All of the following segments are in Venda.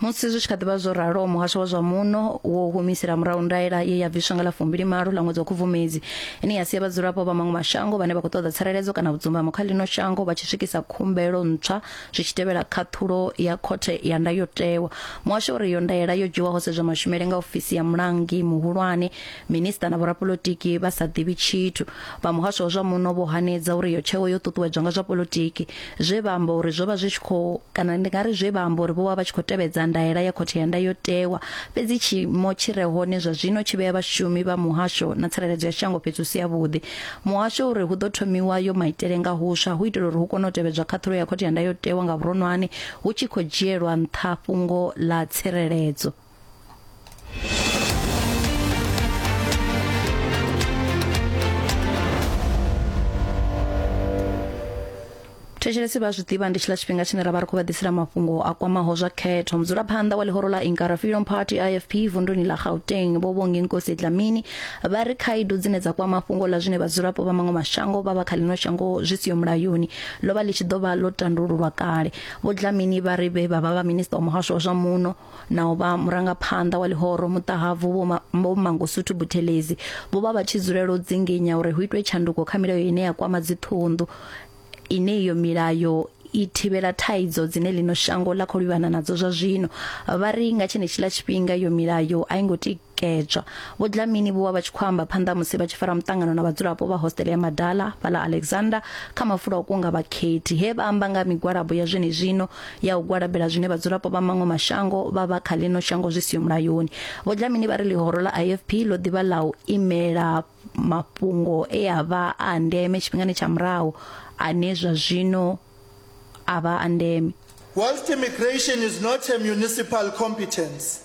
musi zwi tshi kha ḓivha zwo raloho muhasho wa zwa muno wo humisela murahu ndaela ye ya bviswa nga ḽa fumbili malo ḽa ṅwedzi wa khubvumedzi ine ya sia vhadzulapo vha maṅwe mashango vhane vha khou ṱoḓa tsireledzo kana vhudzumbamo kha ḽino shango vha tshi swikisa khumbelo ntswa zwi tshi tevhela khaṱhulo ya khothe ya ndayotewa muhasho uri iyo ndaela yo dzhiwaho sedzwa mashumele nga ofisi ya mulangi muhulwane Minista na vhorapolotiki vha sa ḓivhi tshithu vha muhasho wa zwa muno vho hanedza uri yo tsheo yo ṱuṱuwedzwa nga zwa polotiki zwe vha amba uri zwo vha zwi tshi khou kana ndi nga ri zwe vha amba uri vho vha vha tshi khou tevhedza ndaela ya khothe ya ndayotewa fhedzi tshiimo tshi re hone zwa zwino tshi vhea vhashumi vha muhasho na tsireledzo ya shango fhethu si yavhuḓi muhasho uri hu ḓo thomiwa yo maitele nga huswa hu itela uri hu kone u tevhedzwa khaṱhulo ya khothe ya ndayotewa nga vhuronwane hu tshi khou dzhielwa nṱha fhungo ḽa tsireledzo thetshelesi vha zwi ḓivha ndi tshiḽa tshifhinga tshine ra vha ri khou vha ḓisela mafhungo a kwamaho zwa khetho mudzulaphanḓa wa ḽihoro ḽa inkara freedom party ifp vunduni ḽa gauteng vho vhongi nkosi dlamini vha ri khaedu dzine dza kwama fhungo ḽa zwine vhadzulapo vha maṅwe mashango vha vha kha ḽino shango zwi siho mulayoni ḽo vha ḽi tshi ḓo vha ḽo tandululwa kale vho dlamini vha ri vhe vha vha vha minista wa muhasho wa zwa muno na u vha murangaphanḓa wa ḽihoro muṱahabvu vho Ma- vho mangosuthu buthelezi vho vha vha tshi dzulela u dzinginya uri hu itwe tshanduko kha milayo ine ya kwama dziṱhunḓu ine iyo milayo i thivhela thaidzo dzine ḽino shango ḽa khou livhana nadzo zwa zwino vha ri nga tshenetshiḽa tshifhinga iyo milayo a i ngo ti kedzwa. Vho Dlamini vho vha vha tshi khou amba phanḓa musi vha tshi fara muṱangano na vhadzulapo vha hostele ya Madala fhaḽa Alexander kha mafulo a u kunga vhakhethi he vha amba nga migwalabo ya zwenezwino ya u gwalabela zwine vhadzulapo vha maṅwe mashango vha vha kha ḽino shango zwi siho mulayoni. Vho Dlamini vha ri ḽihoro ḽa IFP ḽo ḓivha ḽa u imela mafhungo e a vha a ndeme tshifhingani tsha murahu ane zwa zwino a vha a ndeme. Whilst immigration is not a municipal competence,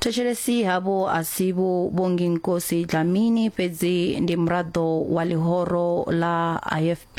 thetshelesi havho a si vho vhongi nkosi dlamini fhedzi ndi muraḓo wa ḽihoro ḽa ifp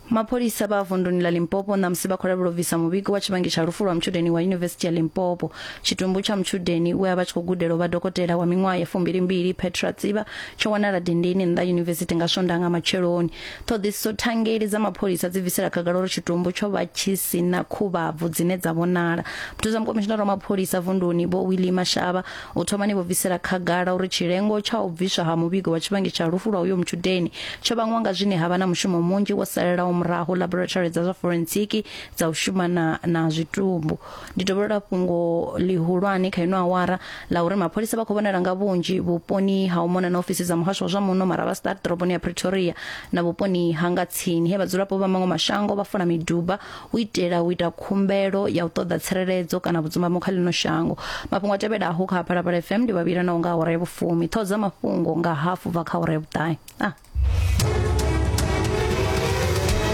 mapholisa vha vunduni ḽa limpopo ṋamusi vha khou lavhela u bvisa muvhigo wa tshivhangi tsha lufu lwa mutshudeni wa yunivesithi ya limpopo tshitumbu tsha mutshudeni we a vha tshi khou gudela u vha dokotela wa miṅwaha ya fumbilimbili petra tsiba tsho wanala dindini nnḓa yunivesithi nga swondaha nga matsheloni ṱhoḓisiso thangeli dza mapholisa dzi bvisela khagala uri tshitumbu tsho vha tshi si na khuvhabvu dzine dza vhonala muthusa mukomishinara wa mapholisa vunduni vho wilima shavha U thomani vho bvisela khagala uri tshilengo tsha u bviswa ha muvhigo wa tshivhangi tsha lufu lwa uyo mutshudeni tsho vhangwa nga zwine ha vha na mushumo munzhi wo salelaho murahu laboratory dza zwa forensiki dza u shuma na, na zwitumbu. Ndi dovholola fhungo ḽihulwane kha ino awara ḽa uri mapholisa vha khou vhonala nga vhunzhi vhuponi ha u mona na ofisi dza muhasho wa zwa muno Maravastad ḓoroboni ya Pretoria na vhuponi ha nga tsini he vhadzulapo vha maṅwe mashango vha fula miduba u itela u ita khumbelo ya u ṱoḓa tsireledzo kana vhudzumamo kha ḽino shango mafhungo a tevhelaho kha phalaphala fm ndi vhavhila naho nga awara ya vhufumi ṱhoho dza mafhungo nga hafu bva kha awara ya vhuṱahe ah.